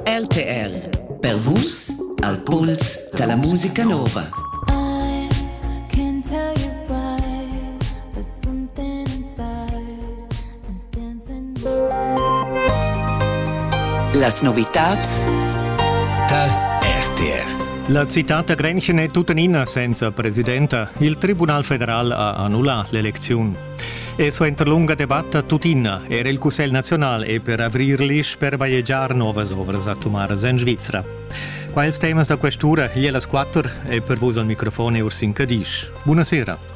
LTR per Vus al puls da la musica nova. Las novitads tar RTR. La citad da Grenchen è tuttenina senza presidenta. Il Tribunal federal ha annullà l'elecziun. E suenter lunga debatta tuttina era il Cussegl nazional è per avrir l'isch per bajegiar novas ovras atomaras en Svizra. Qua ils temas da questura, gli las quattro, e per vos al microfone Ursin Cadisch. Buonasera.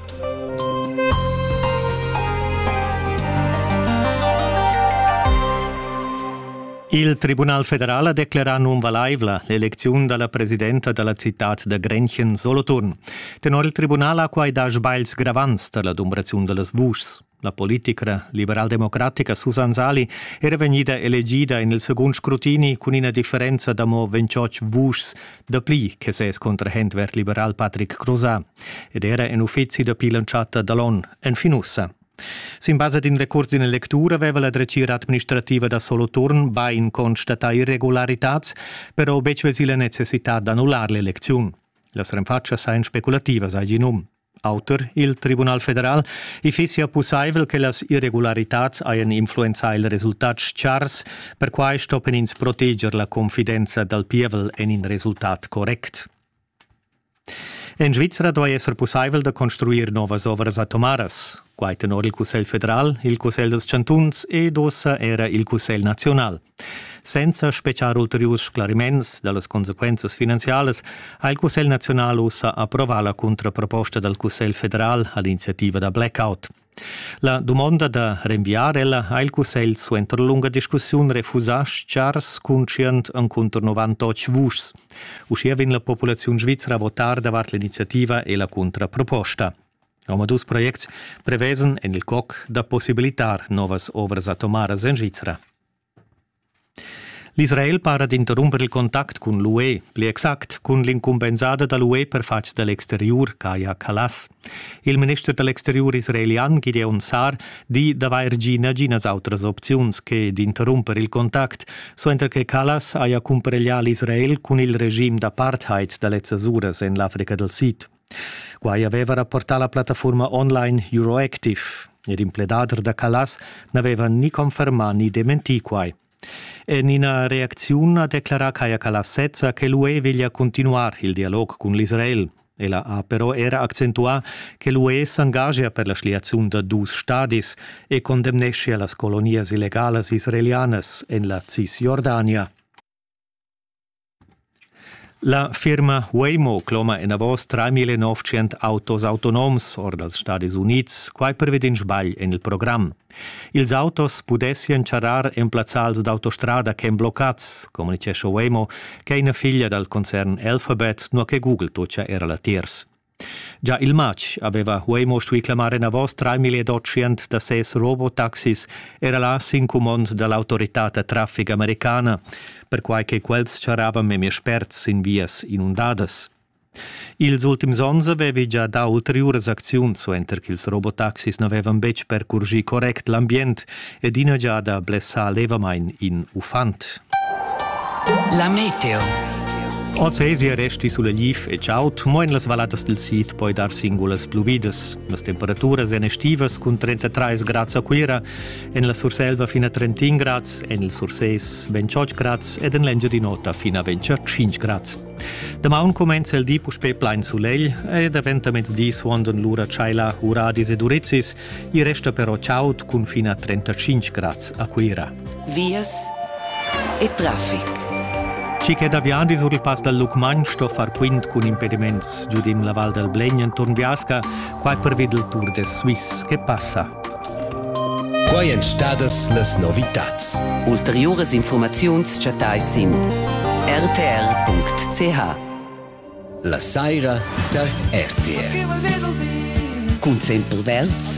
Il Tribunal federal ha declerà nunvalaivla l'elecziun dalla presidenta dalla citad da Grenchen Soloturn. Tenor il tribunal ha quai dà sbagls gravants da la dumbraziun da las vuschs. La politicra liberaldemocratica Susan Sali era vegnida elegida en il segund scrutini cun ina differenza da mo 28 vuschs dapli che ses contrahent verd-liberal Patrick Crozat ed era en uffizi dapi l'entschatta da l'onn enfin ussa. Sin basa d'in recurs d'ina lectura aveva la dretgira administrativa da Soloturn bain constatà irregularitads, però betg vesì la necessità d'annullar l'elecziun. Las renfatschas ein speculativas, ha igl num. Auter il Tribunal federal, i fissia pussaivel che las irregularitads hajan influenzà il resultat chars, perquai stoppen ins proteger la confidenza dal pievel en in resultat correct. En Svizra duai esser pussaivel da construir novas ovras atomaras. Quai tenor il Cussegl federal, il Cussegl dals chantuns ed ossa era il Cussegl naziunal. Senza spetgar ulteriurs sclariments dallas consequenzas finanzialas ha il Cussegl naziunal ussa approvà la contraproposta dal Cussegl federal ad iniziativa da blackout. La dumonda da renviar ella ha il Cussegl suenter lunga discussiun refusà chars conscient encunter 98 vuschs. Uschia vegn la populaziun svizra a votar davart l'iniziativa e la contraproposta. Omadus projects prevesan en il coc da possibilitar novas ovras atomaras en Svizra. L'Israel para d'interrumper il contact cun l'UE, pli exact cun l'incumbensada da l'UE per fatgs da l'exteriur, Kaya Kallas. Il minister da l'exteriur israelian Gideon Sar di d'avair gì naginas autras opziuns che d'interrumper il contact, suenter che Kallas haja cumpareglià l'Israel cun il regim d'apartheid da lezzas uras en l'Africa dal Sid. Quai aveva rapportà la plattafurma online Euroactive. Er in pledader da Callas n'aveva ni confermà ni dementì quai. En ina reacziun ha declarà Kaya Callas sezza che l'UE veglia continuar il dialog cun l'Israel. Ella ha però era accentuà che l'UE s'engagia per la schliaziun da dus stadis e condemneschia las colonias illegalas israelianas en la Cisjordania. La firma Waymo cloma enavos 3900 autos autonoms or dals Stadis Unids, quai pervi d'in sbagl en il program. Ils autos pudessian charrar en plazzals d'autostrada ch'èn bloccads, communitgescha Waymo, ch'è ina figlia dal concern Alphabet, nua che Google tutgia era latiers. Già il matg aveva Huemo stuì clamar enavos trais da ses robotaxis era là sin cumond da l'autoritad da traffic americana, perquai che quels charravan memia spert sin vias inundadas. Ils ultims onns avevi gia dà ulteriuras acziuns suenter ch'ils robotaxis n'avevan betg percurgì correct l'ambient ed ina giada blessà levamain in uffant. La meteo. Oz resti sulla Liv e Ciaut, mo en las valladas del Sid poi dar singulas bluvidas. Las temperaturas èn estivas cun 33 grads a Cuira, en la Surselva fin a 31 grads, en il Surses 28 grads ed en l'Engiadin'Ota fin a 25 grads. Damaun cumenza il di puspè plain sulegl e daventa mezdi suondan lura tschaila, uradis ed urizis. I resta però chaud cun fin a 35 grads a Cuira. Vias e traffic. Chi che da viadi sur il pass dal Lucmagn sto far quint cun impediments giudim la Val del Blegn enturn Viasca, quai pervid il Tour de Suisse che passa. Quai èn stadas las novitads. Ulteriuras informaziuns chattais sin rtr.ch. La saira tar RTR. Cun Semper Verds